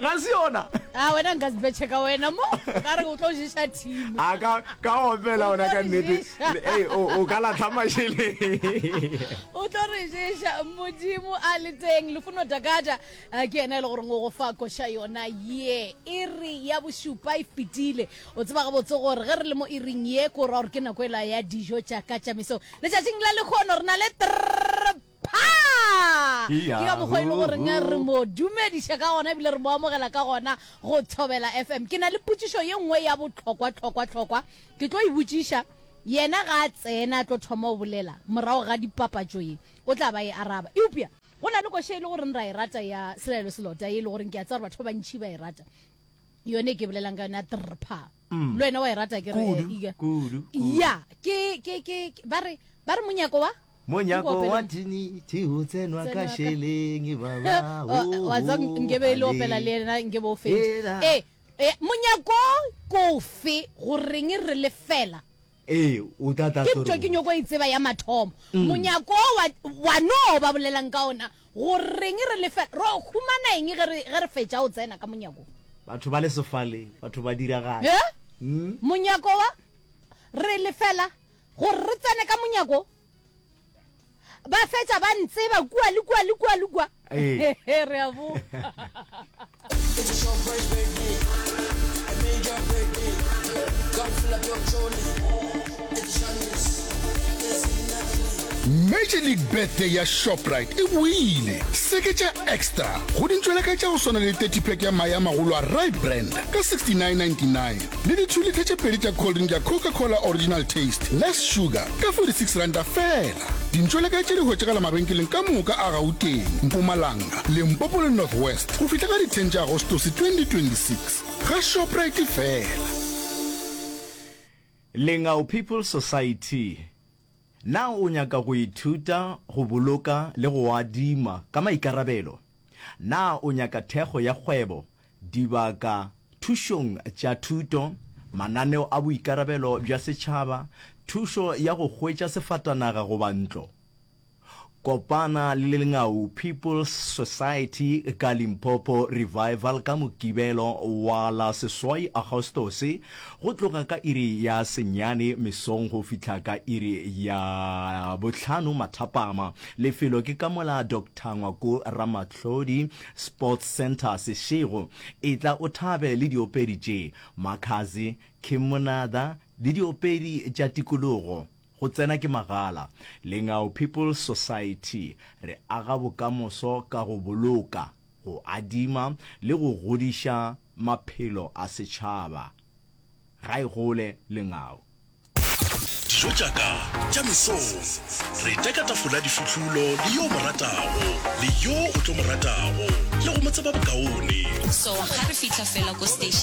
ga se yona a ah, wena nka sibetšhe ka wena mo ka re o tlo ješa team a ah, ka ka opela ona ka nnete ee o ka latlha masheleng o tlo re ješa modimo a le teng lefuno dakata ah, ke ena e le goreng o go fa koša yona ye e re ya bošupa e fetile o tseba ga botse gore ge re le mo e reng ye ko ra gore ke nako e la ya dijo tša ka tšamiso letšatšing la lekgono re na le tr Phaa! Ke ka mokgwa e le goreng re mo dumediša ka gona ebile re mo amogela ka gona go Thobela FM. Ke na le potšišo ye nngwe ya bohlokwa, hlokwa, hlokwa. Ke tlo e botšiša, yena ga a tsena a tlo thoma go bolela morago ga dipapatšo ye, o tla ba e araba. Eupša go na le koša e le goreng ra e rata ya Selaelo Selota ye e le goreng ke a tseba gore batho ba bantši ba e rata, yona e ke bolelang ka yona ya Trrphaa. mm. le wena wa e rata ke re iga ya ke ke ke ba re ba re monyako wa monyako wa tini ti ho tsenwa ka sheleng baba wa tsa nkebe le opela le yena nkebe o fetsa eh, eh monyako kofe go reng re lefela Ee, o tla tlatša gore o. Ke ntwa ke nyoko e tseba ya mathomo. Monyako wo wa, wa no ba bolelang ka ona, go reng re lefe, ro humana eng ge re, ge re fetša go tsena ka monyako wo? Batho ba le sefale, batho ba diragala. Ee, monyako wa, re lefela gore re tsene ka monyako wo. ba fetša ba ntseba kua le kua le kua le kua eh. re a bo major league birthday ya shoprite e boile seke tša extra go dintšweleka tša go swana le 30 pack ya maya magolo a right brand ka 6999 le di two litre tše pedi tša cold drink ya Coca Cola Original Taste, less sugar, ka 46 ranta fela. Dintšo le kae tše di hwetšagala mabenkeleng ka moka a Gauteng, Mpumalanga, Limpopo le North West go fihla ka di 10 tša Agostose 2026. Ga Shoprite fela. Lengau People Society Na o nyaka go ithuta go boloka le go adima ka maikarabelo? Na o nyaka thekgo ya kgwebo Dibaka thušong tša thuto, mananeo a boikarabelo bja setšhaba, thušo ya go hwetša sefatanaga goba ntlo. Kopana le Lengau People's Society ka Limpopo Revival ka Mokibelo wa la seswai Agostose go tloga ka iri ya senyane mesong go fihla ka iri ya bohlano mathapama. Lefelo ke ka mola Doctor Ngwako Ramatlhodi Sports Centre Seshego, etla o thabe le diopedi tše, Makhadzi, Kim Monada le diopedi tša tikologo. Go tsena ke magala. Lengau People's Society, re aga bokamoso ka go boloka, go adima le go godiša maphelo a setšhaba. Ga e gole Lengau. Dijo tša ka tša mesong. Re teka tafola difihlulo le yo o mo ratago, le yo o tlo mo ratago, le go mo tseba bokaone. So ga re fihla fela ko station.